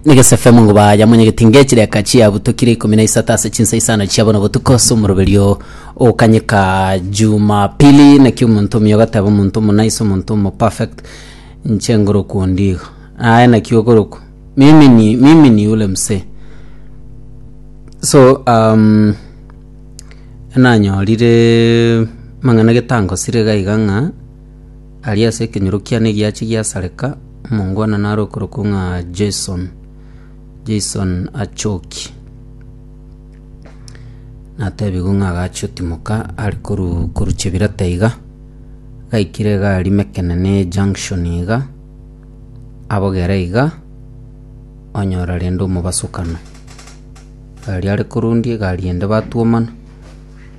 Nigese efemo ngo baya monyegeti ngechireka chiabutokire ikomi na isato ase chinsa isano chia bono botuko ase omoroberio okanyeka Jumapili naki omonto omuya ogateba omonto omo nice omonto omo perfect inche ngorokwa ondigo aye naki ogorokwa mimi ni mimi ni ule msee so um, nanyorire mang'ana getangosire gaiga ng'a Aria ase ekenyoro kiane giachia giasareka, omongwanani are okorokwa ng'a Jason, Jason achoki. Natebigwe ng'a agachia otimoka are koru koru Chebirata iga, gaikire iga aria Mekenene junction iga, abogere iga, onyora rende omobasukano. Egari are korundia egari ende batwomana.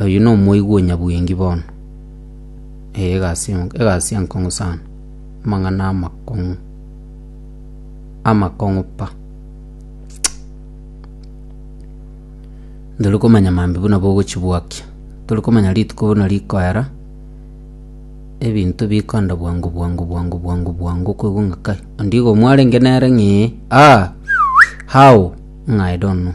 Oyio nomoigwa onyabwengi bono. Ee, egasi enk- egasi enkong'u sana. Amang'ana amakong'u. Amakong'u pa. Ndori komanya mambi buna bogochibwakia. Tori komanya rituko buna rikoera, ebinto bikoenda bwango bwango bwango bwango bwango okoigwa ng'a kai, ondigo mwarenge nere ng'ii, aa, how? Ng'a I don't know.